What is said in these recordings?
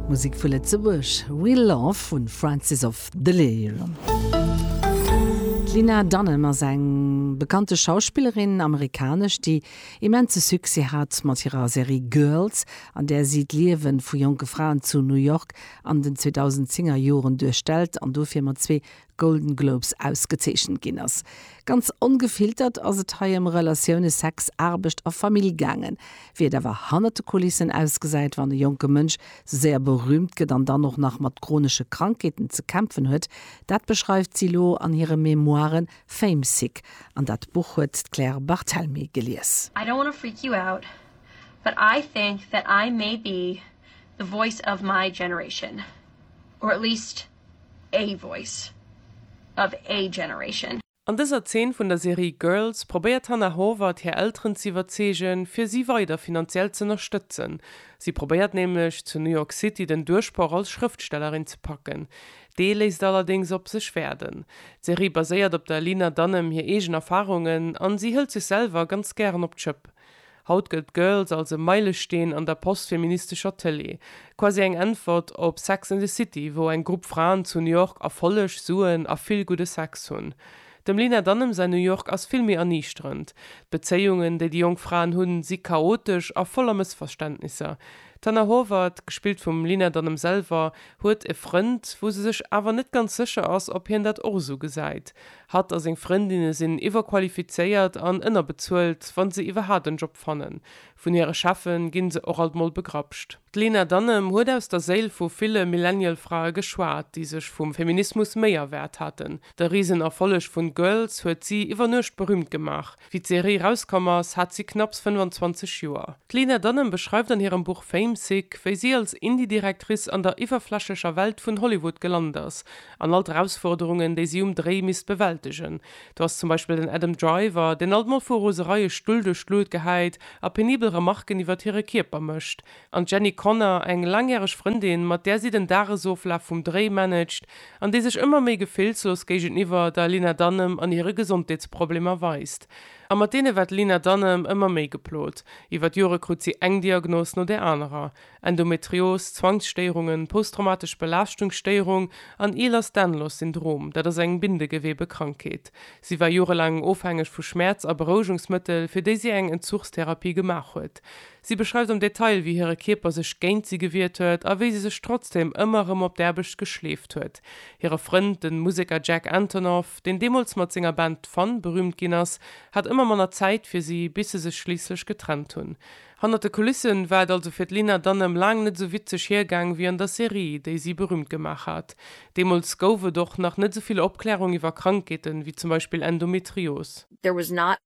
Musik vu Lëtzebuerg, Real Love vu Francis of Delirium. D'Lena Dunham ass eng bekannte Schauspillerin, Amerikanesch, déi immense Succès hat mat hirer Serie Girls, an där si d'Liewe vu jonke Fraen zu New York an den 2010er Joren duerstellt an dofir mat zwee Golden Globes ausgezeechent ginn ass. Ganz ongefiltert ass et hei ëm Relatioune, Sex, Aarbecht a Famill gaangen. Wéi et awer hannert de Kulissen ausgesäit, wann e jonke Mënsch sou séier berüümt gëtt an dann och nach mat chronesche Krankheeten ze kämpfen huet, dat beschreift si elo an hire Memoiren Famesick. An dat Buch huet d'Claire Barthelmy gelies. I don't wanna freak you out, but I think that I may be the voice of my generation, or at least, A voice of a generation. An dëser Zeen vun der Serie Girls probéiert d'Hannah Horvath hir Elteren ze iwwerzeegen, fir si weider finanziell z'ënnerstëtzen. Si probéiert nämlech, zu New York City den Duerchbroch als Schrëftstellerin ze packen. Dee léisst allerdéngs op sech waarden. D'Serie baséiert op der Lena Dunham hir eegen Erfarungen an si hëlt sech selwer ganz gären op d'Schëpp. Haut gëllt Girls als e Meilesteen an der postfeministescher Tëlee, quasi eng Äntwert op Sex and the City, wou eng Grupp Fraen zu New York Erfolleg, Suen a vill gudde Sex hunn. Dem Lena Dunham säin New York ass vill méi erniichterend. D'Bezéiungen, déi déi jonk Fraen hunn, si chaotesch a voller Mëssverständnisser. D'Hannah Horvath, gespillt vum Lena Dunham selwer, huet e Frënd, wou se sech awer net ganz sécher ass, ob hien dat och esou gesäit. Hatt a seng Frëndinne sinn iwwerqualifizéiert an ënnerbezuelt, wa se iwwerhaapt en Job fannen. Vun hire Cheffe ginn se och alt mol begrapscht. D'Lena Dunham huet aus der Séil vu ville Millennial-Frae geschwat, déi sech vum Feminismus méi erwaart haten. De Risenerfolleg vun Girls huet si iwwer Nuecht berüümt gemaach. Wéi d'Serie rauskomm ass, hat si knapps 25 Joer. D'Lena Dunham beschreift an hirem Buch Fame Sick, wéi si als Indie-Directrice an der iwwerflächlecher Welt vun Hollywood gelant ass an all d'Erausforderungen, déi si um Dréi misst bewältegen. Do ass zum Beispill den Adam Driver, deen alt mol vu Rosereie Stull duerch d'Lut gehäit a penibel Remarken iwwert hire Kierper mécht. An d'Jenny Connor, eng laangjäreg Frëndin, mat där si den Dagesoflaf vum Dréi managt an déi sech ëmmer méi gefillslos géigeniwwer der Lena Dunham an hire Gesondheetsproblemer weist. A mat deene war d'Lena Dunham ëmmer méi geplot. Iwwer d'Jore krut si eng Diagnos no där anerer, Endometrios, Zwangsstéierungen, posttraumatesch Belaaschtungsstéierung an Ehlers-Danlos-Syndrom, dat ass eng Bindegewebekrankheet. Si war jorelaang ofhängeg vu Schmäerz a Berouegungsmëttel, fir déi si eng Entzuchstherapie gemaach huet. Si beschreift am Detail, wéi hire Kierper sech géint si gewiert huet a wéi si sech trotzdeem ëmmer erëm op d'Aarbecht geschleeft huet. Hire Frënd, de Museker Jack Antonoff, deen deemools mat senger Band Fun berüümt ginn ass, hat ëmmer manner Zäit fir si, bis se sech schliisslech getrennt hunn. Hannert de Kulisse war et also fir d'Lena Dunham laang net esou witzeg hiergaang wéi an der Serie, déi si berüümt gemaach hat. Deemools gouf et och nach net esou vill Opklärung iwwer Krankheeten, wéi zum Beispill Endometrios. There was not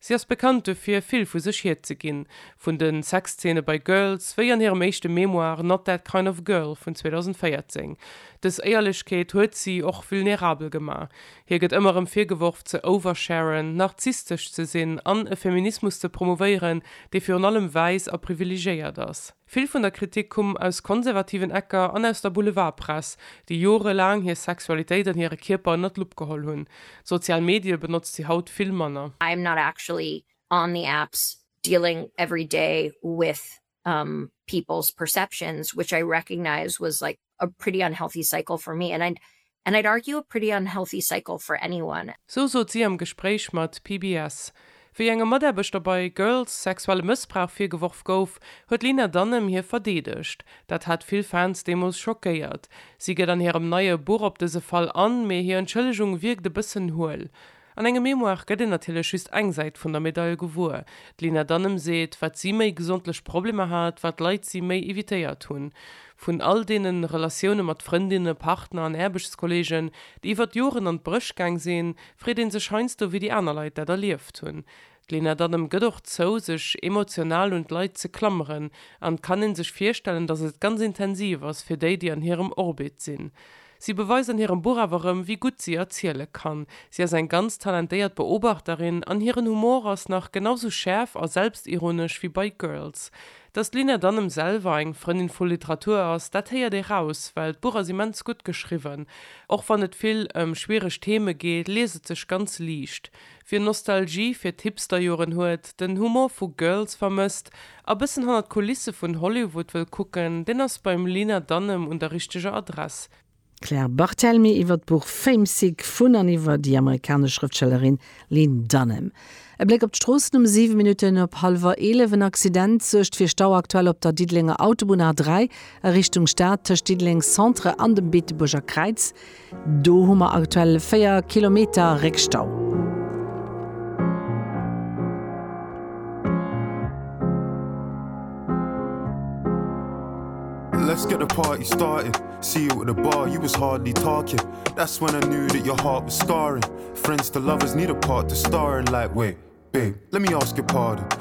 Si ass bekannt dofir, vill vu sech hierzeginn, vun de Sexzeene bei Girls, wéi an hirem éischte Memoir Not That Kind Of Girl vun 2014. Dës Éierlechkeet huet si och vulnerabel gemaach. Hir gëtt ëmmer erëm virgeworf, ze oversharen, narzisstesch ze sinn an e Feminismus ze promouvéieren, dee virun allem wäiss a privilegéiert ass. Vill vun der Kritik kumm aus konservativen Ecker an aus der Boulevardpress, déi jorelaang hir Sexualitéit an hire Kierper ënnert d'Lupp geholl hunn. D'sozial Medie benotzt si haut vill manner. I am not actually on the apps dealing every day with people's perceptions which I recognize was like a pretty unhealthy cycle for me and and I'd argue a pretty unhealthy cycle for anyone. Sou sot si am Gespréich mat PBS. Wéi engem Mataarbechter bei Girls sexuelle Mëssbrauch virgeworf gouf, huet d'Lena Dunham hie verdeedegt. Dat hat vill Fans deemools schockéiert. Si geet an hirem neie Buch op dëse Fall an, mee hir Entschëllegung wierkt e bëssen huel. An engem Memoire gëtt een natierlech just eng Säit vun der Medail gewuer. D'Lina Dunham seet, wat si méi gesondlech Problemer hat, wat Leit si méi evitéiert hunn. Vun all deene Relatioune mat Frëndinne, Partner an Aarbechtskolleegen, déi iwwert Joren an d'Bréch gaang sinn, freet ee sech heiansdo, wéi déi aner Leit dat erlieft hunn. D'Lena Dunham gëtt och zou, sech emotional un d'Leit ze klammeren, an et kann een sech virstellen, datt et ganz intensiv ass fir déi, déi an hirem Orbit sinn. Si beweist an hirem Buch awer erëm, wéi gutt si erziele kann. Si ass eng ganz talentéiert Beobachterin, an hiren Humor ass nach genau sou schäerf a selbstironesch wéi bei Girls. Datt d'Lena Dunham selwer eng Frëndin vu Literatur ass, dat héiert ee raus, well d'Buch ass immens gutt geschriwwen. Och wann et vill ëm schwiereg Theme geet, liest et sech ganz liicht. Wien Nostalgie fir d'Hipsterjoren huet, den Humor vu Girls vermësst a bëssen hannert d'Kulisse vun Hollywood wëll kucken, deen ass beim Lena Dunham un der richteger Adress. D'Claire Barthelmy iwwer d'Buch Fame Sick vun an iwwer déi amerikanesch Schrëftstellerin Lene Dunham. E Bléck op d'Stroossen um 7 Minutten op hallwer 11. En Accident suergt fir Stau aktuell op der Diddelenger Autobunn A3 a Richtung Stad tëscht Diddeleng Centre an dem Beetebuerger Kräiz. Do hu mer aktuell 4 Kilometer Réckstau. Let's get the party started see you at the bar you was hardly talking that's when I knew that your heart was scarring friends the lovers need a part to star in like way babe let me ask your pardon